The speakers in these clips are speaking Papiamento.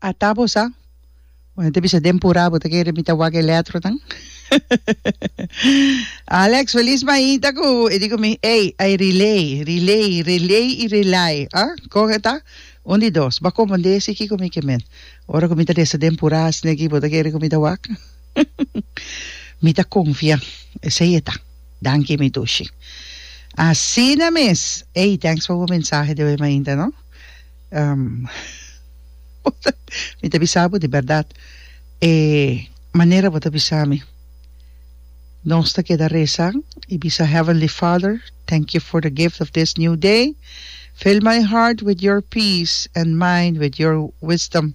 A ta bo sa? Bo no ta bisa den pura bo ta kere mi ta wak e letronan? Alex Feliz mainta ku e di ku mi ey a e relay, relay, relay i relay a kon e ta? Un di dos bo a kompondé si kiko mi ke men ora ku mi ta resa den pura asina aki bo ta kere ku mi ta wak? Mi ta confia. Esey e ta. Danki mi dushi. Asina mes. Ey thanks for bo mensahe de hoy mainta no. Um mi ta bisa bo di berdad e manera bo ta bisa mi nos ta keda resa y bisa heavenly father thank you for the gift of this new day fill my heart with your peace and mind with your wisdom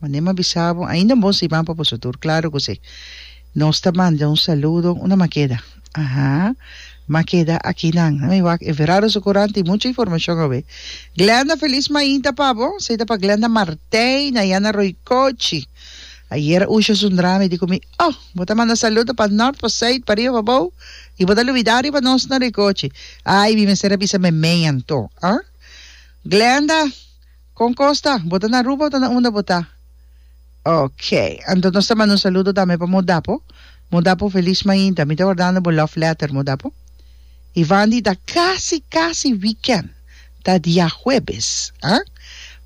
Mané m'a bisa bo, ainda un bon siman pa boso tur. Claro cu si. Nos ta manda un saludo. Una m'a keda? Aha. M'a keda aki nan. Nan mi wak e Verano su Courant tin mucha informacion awe. Glenda, feliz mainta pa bo. Esey ta pa Glenda Martijn, Ayana Roycochi. Ayer Usha Sundrame di cu mi, Oh, bo ta manda saludo pa Nort, pa Zuid, pa riba, pa bou, y bo ta lubida riba nos na Roycochi. Ay, mi mester a bisa Memean to. Huh? Glenda. Kon kos ta? Bo ta na Aruba o ta na unda bo ta? Ok, anto nos ta manda un saludo tambe pa Modapo. Modapo, feliz mainta. Mi ta wardando bo love letter, Modapo. I Vandi ta casi, casi weekend. Ta diahuebes, ah.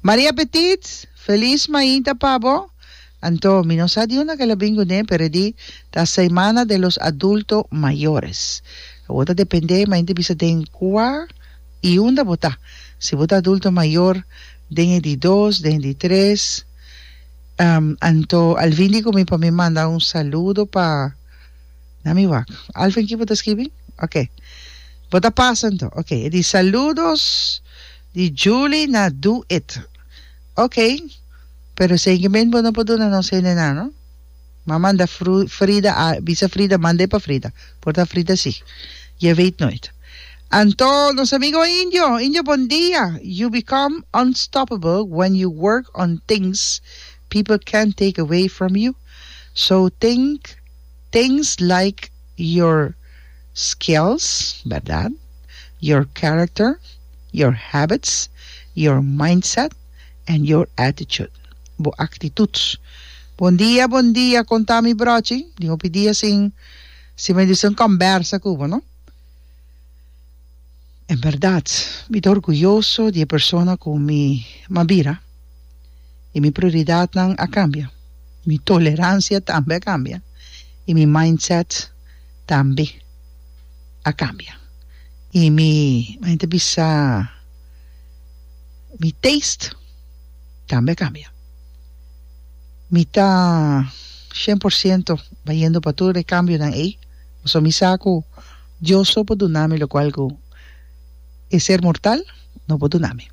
Maria Petit, feliz mainta pa bo. Anto, mi no sa di unda kela bin ku ne, pero e di ta Semana de los Adulto Mayores. Awor ta depende, mainta bisa den kua. I unda bo ta? Si bo ta adulto mayor den e di dos, den e di tres, ehm, anto Alvin di ku mi pa mi manda un saludo pa, na mi wak, Alvin aki bo ta skibi? Ok, bo ta pasa anto, ok, e di saludos di Julie na Do It, ok, pero esei ke men bo no por duna nos hende nan no. Ma manda fru Frida a bisa Frida mand'e pa Frida por ta Frida si je weet nooit Anto nos amigo Indio Indio bon dia You become unstoppable when you work on things people can't take away from you so think things like your skills berdad your character your habits your mindset and your attitude. bo actitud. Bon dia bon dia con ta mi brochi di hopi dia sin sin mi dicen combersa cu bo no en berdad mi ta orguyoso di e persona cu mi ma bira y mi prioridadnan a cambia mi tolerancia tambe a cambia y mi mindset tambe a cambia y mi mi ta bisa mi taste. tambe cambia. Mi ta cien por ciento bayendo pa tur e cambionan ey, pasobra mi sa cu Dios so por duna mi locual cu e ser mortal no por duna mi.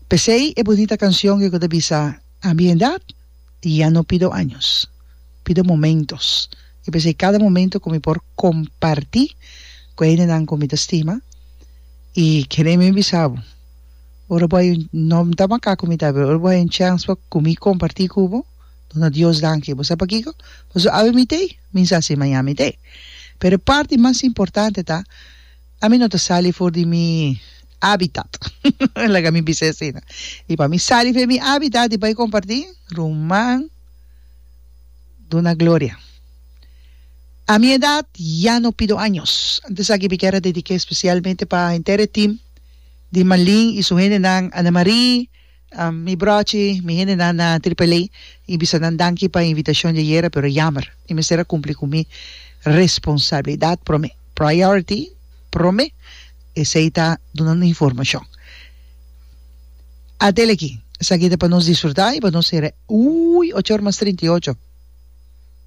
Pesey e bunita cancion que cu ta bisa, A mi edad ya no pido años, pido momentos. I pesey cada momento cu mi por comparti cu e hendenan cu mi ta stima, y kende mi bisa bo, Ora bo hay un no ta maca cu mi ta pero ora bo hay un chance pa cu mi comparti cu bo duna Dios danki bo sa pakico pasobra awe mi tey mi sa si maña mi tey pero e parti mas importante ta ami no ta sali for di mi habitat laga mi bisa asina y pa mi sali for di mi habitat y bay comparti ruman duna gloria a mi edad ya no pido años antes aki mi kier a dedica especialmente pa henter e team. di Malin y su hendenan, Ana Marie, mi brochi, mi hendenan na Triple A y bisa nan danki pa invitacion di ayera pero yamer mi mester a cumpli cu mi responsabilidad prome, priority prome esey ta duna un informacion. Atel aki, esaki ta pa nos disfruta y pa nos hera, uy! Ocho or mas trinta y ocho.